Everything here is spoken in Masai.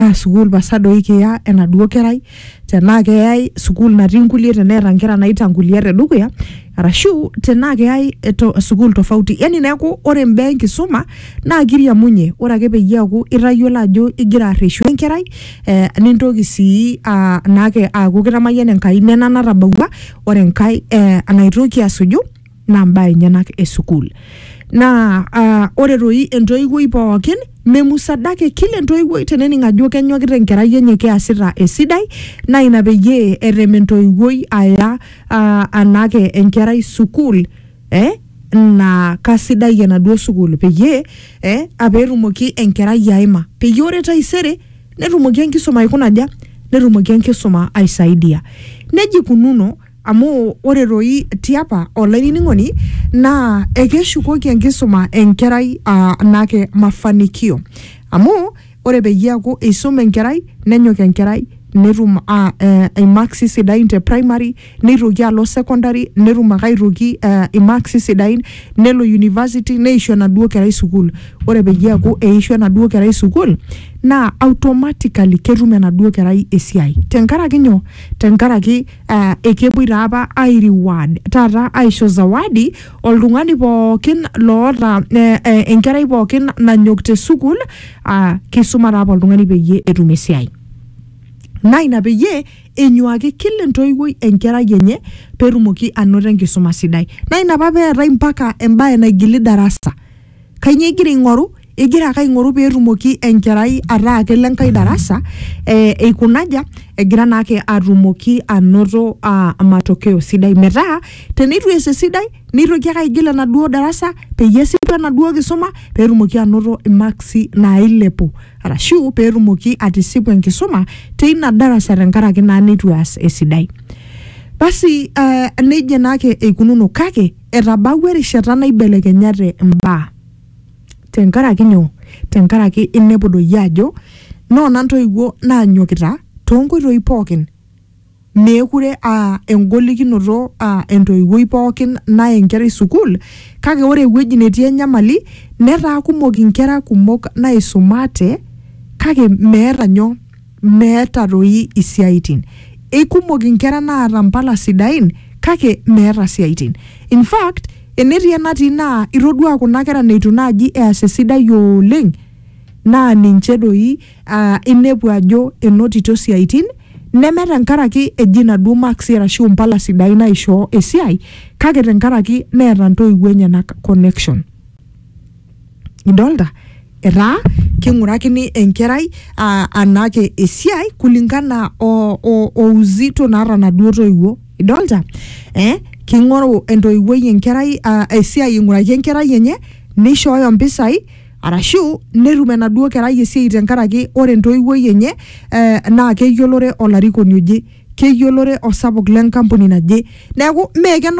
naa sukuul pasa doi kiya enaduo kerai tenaa keyai sukuul natii nkulie teneeta nkera naitangulia tedukuya arashu tenaa keyai eto- sukuul tofauti yani neeku ore imbaa enkisuma naa kiriamunye ore ake peyie eeku itayiolo ajo igira arreshu enkerai eh, nintoki sii uh, naake aaku kitamayiana Enkai nena natabawua ore enkae eh, enaitoki asuju naa mbaa enyenak e sukuul naa ah, ore toi entoiwuoi pookin memusadake kila entoiwuoi tenening ajo kenyokita enkerai enye keasita esidai naa ina peyie erem entoiwuoi aya ah, anake enkerai sukuul eh, naa kasidai enaduo sukuul peyie eh, ah, peetumoki enkerai aima peyie ore taisere netumoki enkisuma aikuna aja netumoki enkisuma aisaidia nejia ikununo Amu ore doi tiapa, olainining'oni, naa ekeshukoki enkisuma enkerai aa naake mafanikio. Amu ore peyie eaku eisuma enkerai, nenyok enkerai netum aa ee imaksi sidain te primary, neitoki alo secondary netum ake aitoki aa imaksi sidain, nelo university neishu enaduo kerai sukuul. Ore peyie eaku eishu enaduo kerai sukuul naa automatically ketum enaduo kerai esiai. Tenkaraki nyoo? Tenkaraki. eh, ekepuoi taa apa ai reward taata aisho zawadi oltung'ani pookin loota eh, eh, enkerai pookin nanyok te sukuul ah, kisuma taa apa oltung'ani peyie etum esiai naa ina peyie enyuaki kila entoiwuoi enkerai enye peetumoki anoto enkisuma sidai naa ina apa peetae mpaka embaye naigili darasa kainyoo igira aing'oru igira ake aing'oru peetumoki enkerai ataa kelo enkae darasa eh, eikunaja egira naake atumoki anoto ah, matokeo sidai metaa teneitu ees esidai neitoki ake aigil enaduo darasa peyie esipu enaduo kisuma peetumoki anoto imaksi nailepu arashu peetumoki atisipu enkisuma teina darasa tenkaraki naa neitu eas esidai basi eh, nejia naake eikununo kake Etabawua erishata naibelekenyate imbaa. Tenkaraki nyoo? Tenkaraki inepu doi ajo noona ntoiwuo naanyokita toonkoitoi pookin. Meekure aa engolikinoto aa entoiwuoi pookin naya enkerai sukuul kake ore ewueji netii enyamali netaa kumok inkera kumok naisumate kake meeta nyoo? meeta toi isiaitin. Eikumok inkera naata mpala sidain kake meeta siaitin. In fact, enetii enatii naa itodua kuna kera neitu naaji eas esidai oleng naa ninche doi uh, inepu ajo enotito siaitin neme tenkaraki eji inaduo maksi arashu impala sidain naishoo esiai kake tenkaraki neeta ntoiwuo enyenak connection. Idolta? Etaa king'urakini enkerai ah, anake esiai kulingana o, o, o uzito naata naduo toiwuo. Idolta? Eh, king'oru entoiwuoi enkerai ah, esiai aing'uraki enkerai enye, nishooyo mpisai, arashu netum enaduo kerai esiai tenkaraki ore entoiwuoi enye, eh, na keyiolore olarikoni oje. Keyiolore osapuk lenkampuni naje. Neeku, me kenare